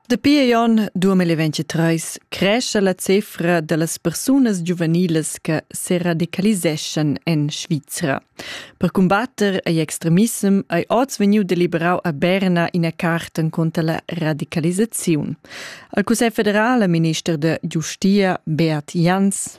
Dapi Jon 2023 cresce la cifra da las persunas giuvenilas che se radicaliseschan en Svizra. Per combatter ei extremissem ei oz vegniu deliberau a Berna ina carta contra la radicalisaziun. Al Cussegl federal, minister de Giustia Beat Jans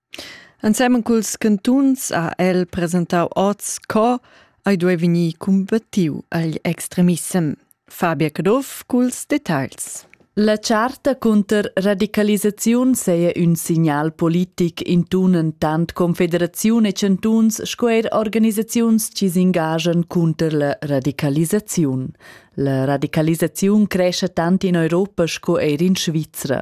Ensemen culs cantuns ha el presentau oz co ei duei vegnir cumbattiu igl extremissem. Fabia Caduff culs detagls. La charta cunter radicalisaziun saja ün signal politic intunen tant Confederaziun e chantuns sco eir organisaziuns chi s'engagian cunter la radicalisaziun. La radicalisaziun crescha tant in Europa sco eir in Svizra.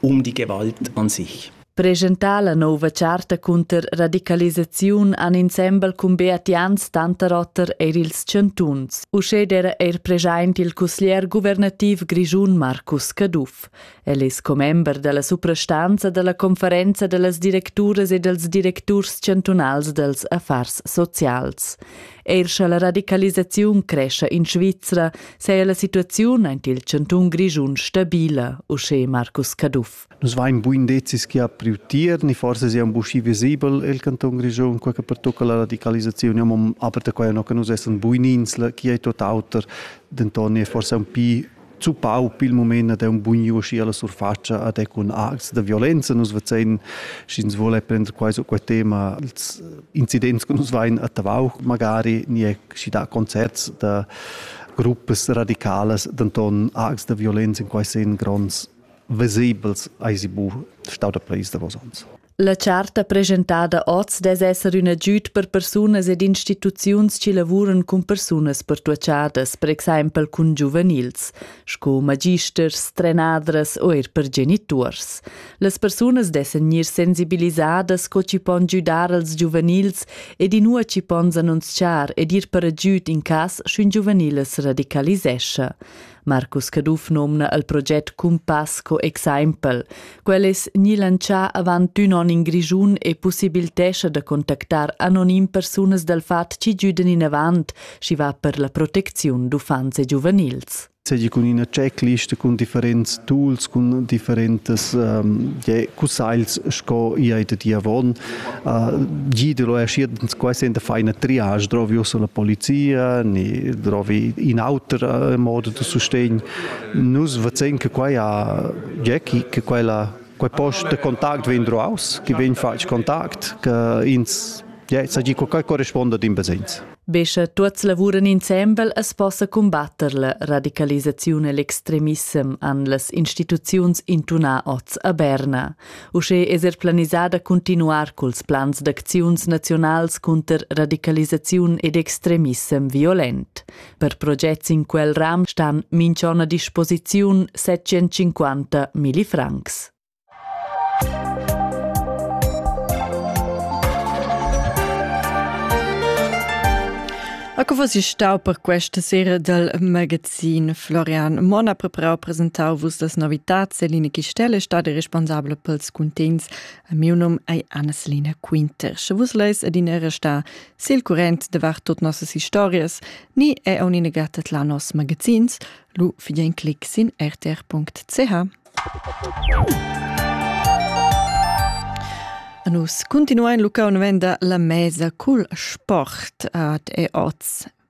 um die Gewalt an sich. Presentar la nova charta cunter radicalisaziun an insembel cun Beatians Tanterotter er ils chantuns. Uschè era er present il cusglier guvernativ grischun Marcus Caduff. El es commember della suprastanza della conferenza dellas directuras e dels directurs chantunals dels affars socials. Eir scha la radicalisaziun crescha in Svizra, saja la situaziun aint il chantun Grischun stabila, uschè Marcus Caduff. Nus vain buin decis chi ha priu tier, ni forse sia un buschi visibel el canton Grischun, quel che pertocca la radicalisazione, aber da quai no che nus essan buinins, chi è tot auter, denton è forse un pi zuppau pil moment ad un bugn uschi alla surfacia ad e cun acts da violenza nus vezein sch'ins vuole prender quai su quel tema als incidents che nus vain a Tavau magari ni è schi da concerts da gruppas radicalas d'anton acts da violenza in quai sen gronds vesibels ai si bu stau da pleis da vos ans. La charta presentada oz dess esser ün agüd per persunas ed instituziuns chi lavuran cun persunas pertuochadas, per exaimpel cun giuvenils, sco magisters, trenadras o eir per genituors. Las persunas dessan gnir sensibilisadas co chi pon giudar als giuvenils ed inua chi pon s'annunzchar ed ir per agüd in cas sch'ün giuvenil as radicalisescha. Marcus Caduff nomna il proget Cumpass co exempel. Quel es gni lantschà avant ün on in Grischun e possibiltescha da contactar anonim persunas dal fat chi güdan inavant, schi va per la protecziun d'uffants e giuvenils seigi cun ina checklist cun differents tools cun differentas um, cussagls sco i ei da di avon Gi lo è schi quasi in faina triage, drovi usso la polizia, ni drovi in auter modo da sustegn. Nus vezin che quai ha Jackie, che quella quei post de contact vegn droaus, che vegn fatg contact, che ins ja, sa gi, quai corresponda din besenz. Be sche tuots lavuran insembel as possa combatter la radicalisaziun e l'extremissem an las instituziuns intunà oz a Berna. Uschè es er planisà da cuntinuar culs plans d'acziuns naziunals cunter radicalisaziun ed extremissem violent. Per progets in quel ram stan minchon a disposiziun 750 millifrancs. A co was stau per questa sera dal magazin Sin Florian Mon ha preparau presentau vus las novitats Eline Chistelle stadi responsabla pels cuntegns. A miu num ei Anna-Selina Quinter. Sche vus leis adina restar sil current davart tot nossas historias, ni è unine gattet la nos magazins, lu figlia in clic sin rtr.ch. Nus continuain Luca un venda la mesa cul sport ad e oz